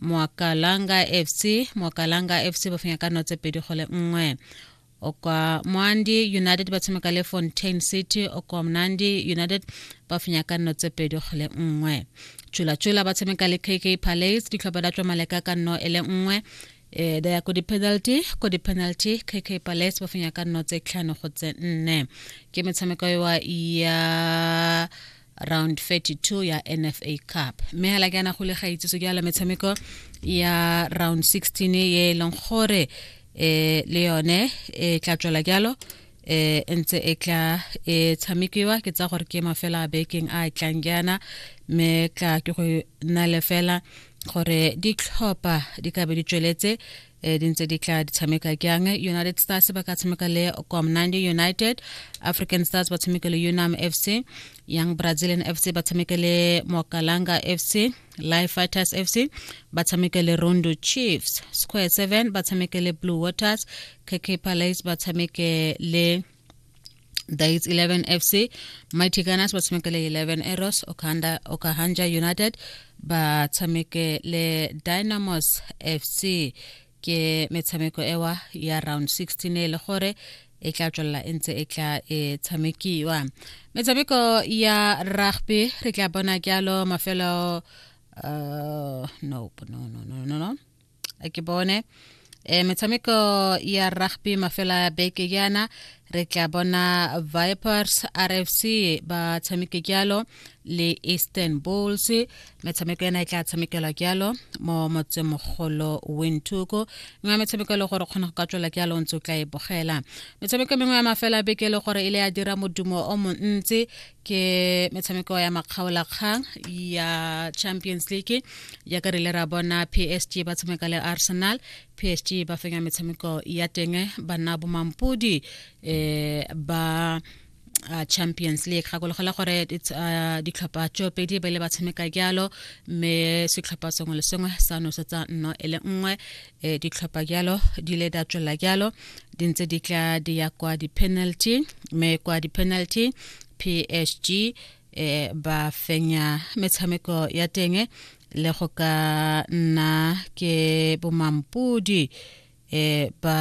moakalanga fc moakalanga fc ba fenya ka notse pedi go le nngwe okwa moandi united ba tshameka le fontaine city okwa mnandi united ba fenya ka nno tse pedi go le nngwe tšolatšola ba tshameka le kk palace ditlhopha da tswa maleka ka nno e le nngwe eh da ya ko di-penalty ko di-penalty kk palace ba fenya ka nno tse tlhano go tse nne ke metshameko ya round 32 ya nfa cup mme hela ke ana go le ga itseso ke ala metshameko ya round 16 ye e leng gore eh le yone e tla tswela jalo eh ntse e tla e tshamekiwa ke tsa gore ke mafela a bekeng a tlang jana mme tla ke go na le fela gore ditlhopha di ka be di tsweletse e di ntse di tla di tshameka jang united stars ba ka tshameka le comnande united african stars ba tshameka le unam fc young brazilian fc ba tshameka le mokalanga fc life fighters fc ba tshameka le rondo chiefs square 7 ba tshameka le blue waters kk palace ba tshameke le Dates 11 FC Mighty Gunners ba tshameke le 11 Arrows Okanda Okahanja United ba tshameke le Dynamos FC ke metshameko ewa ya round 16 e le gore e tla tswelela e ntse e tla e tshamekiwa metshameko ya rugby re tla bona jalo mafelo uh, no, no, no, no, no, no. ke bone e metshameko ya rugby mafela beke yana re tla bona vipers rfc ba tshameke jalo le eastern bulls metshameko ena e tla tshamekelwa jalo mo motsemogolo wintuko nngwe ya metshameko e le gore kgona go ka tswela jalo o ntse o tla e bogela metshameko mengwe ya mafela beke e le gore e le ya dira modumo o montsi ke metshameko ya makgaolakgang ya champions league jaaka re ile ra bona psg ba tshameka le arsenal psg ba fenya metshameko ya teng ba nna bomampodi um ba uh, champions league gakologelwa gore uh, ditlhopha tso pedi ba ile ba tshameka jalo mme setlhopha sengwe le sengwe sa nosetsa nno e le nngwe e ditlhopha jalo di le da tswela jalo di ntse di tla di ya kwa di-penalty mme kwa di-penalty psg e ba fenya metshameko ya teng le go ka nna ke bomampodi e ba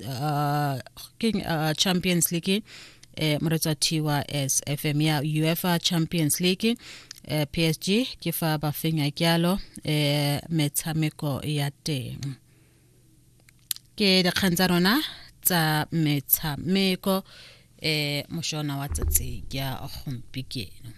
uh, king uh, champions league eh, moretsa thiwa as fm ya uefa champions league eh, psg ke fa ba fenya kyalo eh, metshameko ya teng ke dikgang tsa rona tsa metshameko eh moshona wa tsatsi ya gompikeno